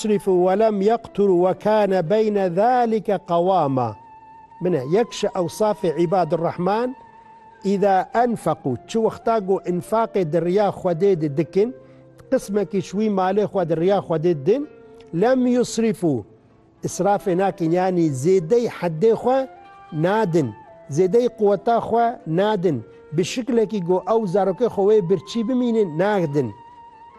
Şerîf û welem yeqtur we kane beyne zalike qewama min e. Yek ji ewsafê îbad rehman, îza enfeqû, çi wexta ku înfaqê di riya Xwedê de dikin, qismekî ji wî malê xwe di riya Xwedê didin, lem yusrifû, îsrafê nakin yanî zêdeyî heddê xwe nadin, zêdeyî quweta xwe nadin, bi şiklekî ku ew zarokê xwe wê birçî bimînin nadin.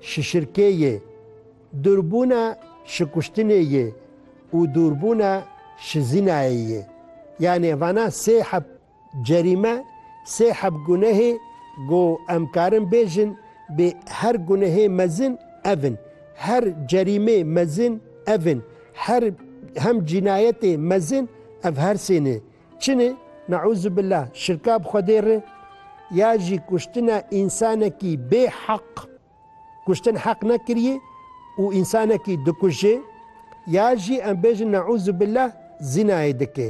Şişirkê yê, dûrbûna şikuştinê yê û dûrbûna şizînayê yê. Yanê vana sê heb cerîme, sê heb gunehê ku em karin bêjin bê her gunehê mezin ev in, her cerîmê mezin ev in, her hem cînayetê mezin ev her sê ne. Çinê, neûzubillah, şirka bi Xwedê re ya jî kuştina însanekî bê heq, kuştin heq nekiriyê û însanekî dikuje ya jî em bêjin neûzubillah zînayê dike.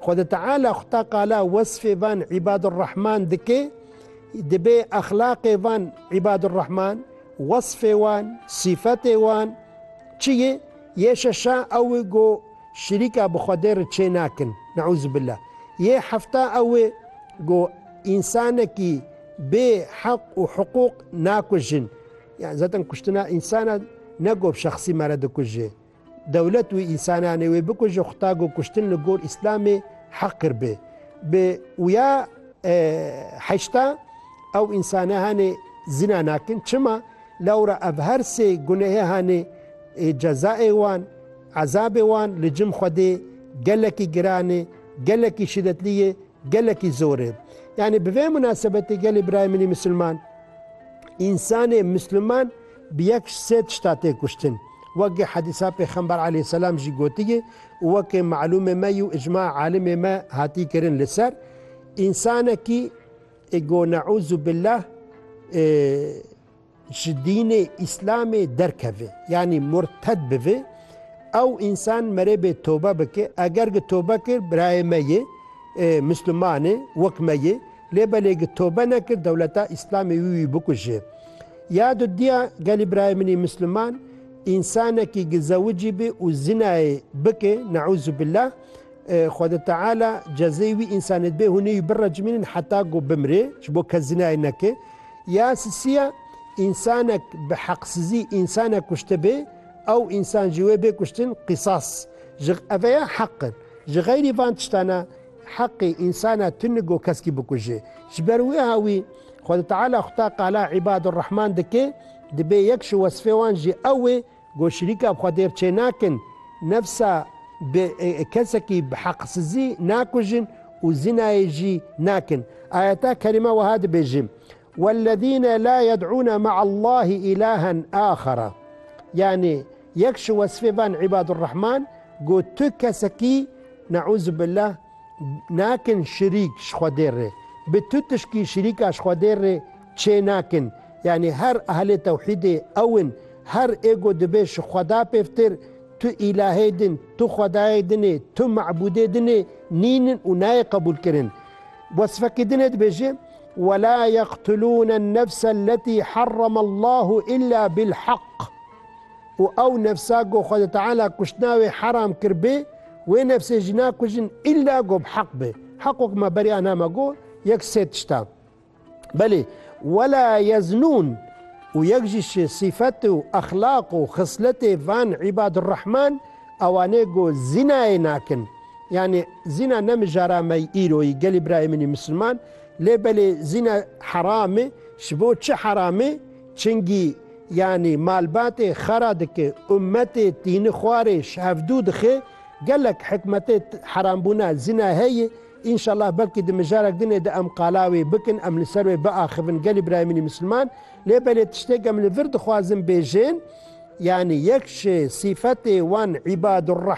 Xwedê Teala xwe ta qala wesfê van îbadurrehman dike, dibê exlaqê van îbadurrehman, wesfê wan, sîfetê wan çi ye? Yê şeşan ew e ku, Şirîka bi Xwedê re çê nakin. Neûzubila. Yê hefta ew e ku însanekî bê heq û hiqûq nakujin. Yan zaten kuştina însana ne ku bi şexsî me re dikuje. Dewlet wî însananê wê bikuje xweta ku kuştin li gor îslamê heqir be. Bi wya heşta ew însane hanê zina nakin. Çima? Lewra ev her sê gunehê hanê cezayê wan. Ezabê wan li cim Xwedê gelekî giran e, gelekî şîdetlî ye, gelekî zor e. Yanî bi vê munasebetê gelê birayê min ê misilman, însanê misliman bi yek ji sê tişta tê kuştin. Wekî hedîsa pêxember aleyhîsselam jî gotiye û wekî malûmê me yû îcma alimê me hatî kirin li ser, însanekî ê go neûzûbillah ê, ji dînê îslamê derkeve yanî murted bibe ew însan merêbê tobe bike eger gi tobe kir birayê me ye misliman e wek me ye lê belê gi tobe nekir dewleta îslamê wî wî bikuje ya du diya gelî birayê min î misliman însanekî gi zewicî be û zinayê bike neûzûbillah Xweda Teala cezeyê wî însanê dibe hûn ê wî birecimînin heta ku bimire ji bo kes zinayê neke Ya sisî ya, Însanek bi heqsizî însanek kuştibê, ew însan ji wê bê kuştin, qîsas. Ji Ev ya heq in. Ji xeyrî van tiştan e, heqê însanek tu nigo keskî bikujê. Ji ber wiha wî Xwedî Teala xuta qala îbadurrehman dike, dibê yek ji wesfê wan jî ew wê, Ku şirîka bi xwe têr çênakin, nefsa bi kesekî bi heqsizî nakujin û zînayê jî nakin. Ayeta kerîme wiha dibêje, Wellezîne la yed'ûne me'allâhî îlâhen âxera. Yanî yek ji wesfê van îbadurrehman ku tu kesekî, ne'ûzubillah, nakin şirîk ji xwe dêr rê. Bi tu tişkî şirîka ji xwe dêr rê Çê nakin. Yanî her ehlê tewhîdê ew in. Her êgo dibe ji xweda pêvtir, tu îlahê din, tu xwedayê din ê, tu mebûdê din ê, nîn in û nayê qebûlkirin. Wesfekî din ê dibêje, Wela yeqtulûn ennefse elletî herreme Allahu îlla bilheq. Û ew nefsa ku Xwedê Teala kuştina wê heram kiribê, wê nefsê jî nakujin îlla ku bi heq be. Heq wek me beriya name got, yek sê tişt e. Belê, wela yeznûn û yek jî ji sîfet û exlaq û xisletê van îbadurrehman ewanê ku zînayê nakin. Yanî zîna ne mijara me yî îro yî gelî birayê min yî misilman. Lê belê zîna heram e. Ji bo çi heram e? Çingî yanî malbatê xera dike, ummetê tînixwarê ji hevdû dixe. Gelek hikmetê herambûna zîna heye. Înşallah belkî di mijarek din ê de em qala wê bikin, em li ser wê biaxivin gelê birayê min ê misilman. Lê belê tiştêk em li vir dixwazin bêjin, yanî yek ji sîfetê wan îbadurrehman,